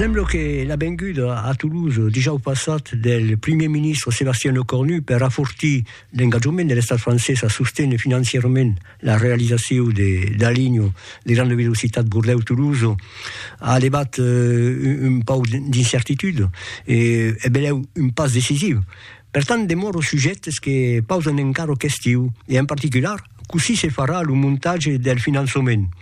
Sembla que la venguda a Toulouse dijòu passat del primièr ministre Sébastien Lecornu per afortir l'engatjament de l'estat francés a sostener financièrament la realizacion de la linha de granda velocitat Bordeus-Toulouse a levat euh, un pauc d'incertitud e e belèu un pas decisiu. Per tant, demòro sujèctes que pausan encara questiu e en particular cossí se farà lo montatge del finançament.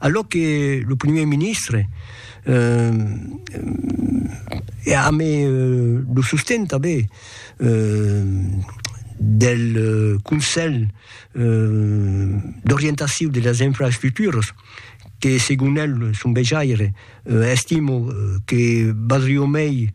A lo que lo primièr ministre eh, e amé lo sosten tanben del Conselh d'orientaciu de las infraestructuras, que segon el, son vejaire, estimo que valdrió mei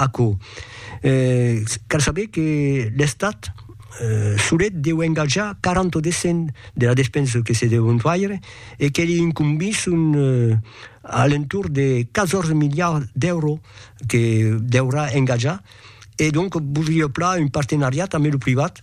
Aquò, cal saber que l'Estat solet deu engatjar 40 o de cent de la despensa que se deu faire e que li incombís un alentorn de 14 miliards d'èuros que deurà engatjar e donc vos li hèu plan un partenariat amé lo privat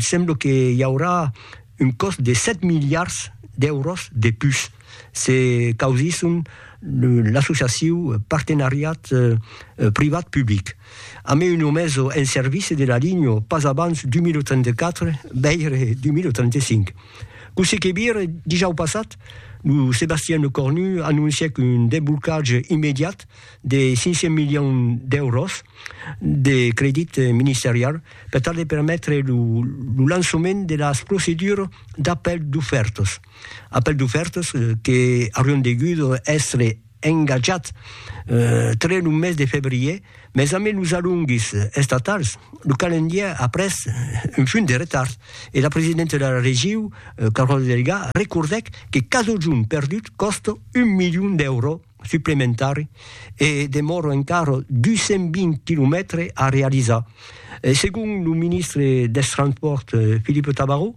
Sembla que i aurà un còst de 7 miliards d'èuros de pus se causisson l'associaciu Partenariat privat-public. A mai una meso en servici de la linha pas abans 2034, veire 2035. Cossí que vire, dijau passat, lo Sébastien Lecornu anoncièc un desblocatge immediat de 500 milions d'èuros de credit ministerial per tal de permetre lo lançament de las procedures d'apèl d'ofèrtas, apèl d'ofèrtas que aurián degut èstre engatjats tre lo mes de febrièr, mas ambe los alongues estatals, lo calendièr a pres un funt de retard e la presidenta de la Regiu, Carole Delga, recordèc que cada jorn perdut còsta un milion d'èuros suplementari e demòra encara 220 quilomètres a realizar. Segon lo ministre dels Transpòrts Philippe Tabarot,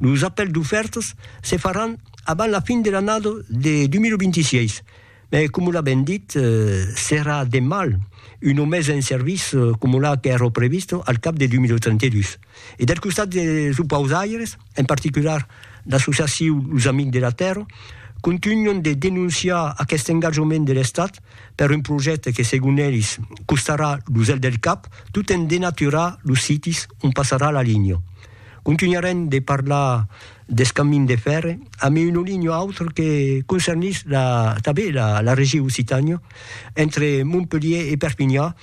los apèls d'ofèrtas se faràn abans la fin de l'annada de 2026, mas coma l'a ben dit, serà de mal una mesa en servici coma la qu'èra prevista al cap de 2032. E del costat des opausaires, en particular l'associaciu Los Amics de la Tèrra, contunhan de denonciar aqueste engatjament de l'Estat per un projècte que, segon elis, costarà lo zel del cap tot en denaturar los sites ont passarà la linha. Contunharem de parlar deth camin de fèrre amb un olhinho autre que concernís tanben la Regiu Occitània, entre Montpelhier e Perpinhan,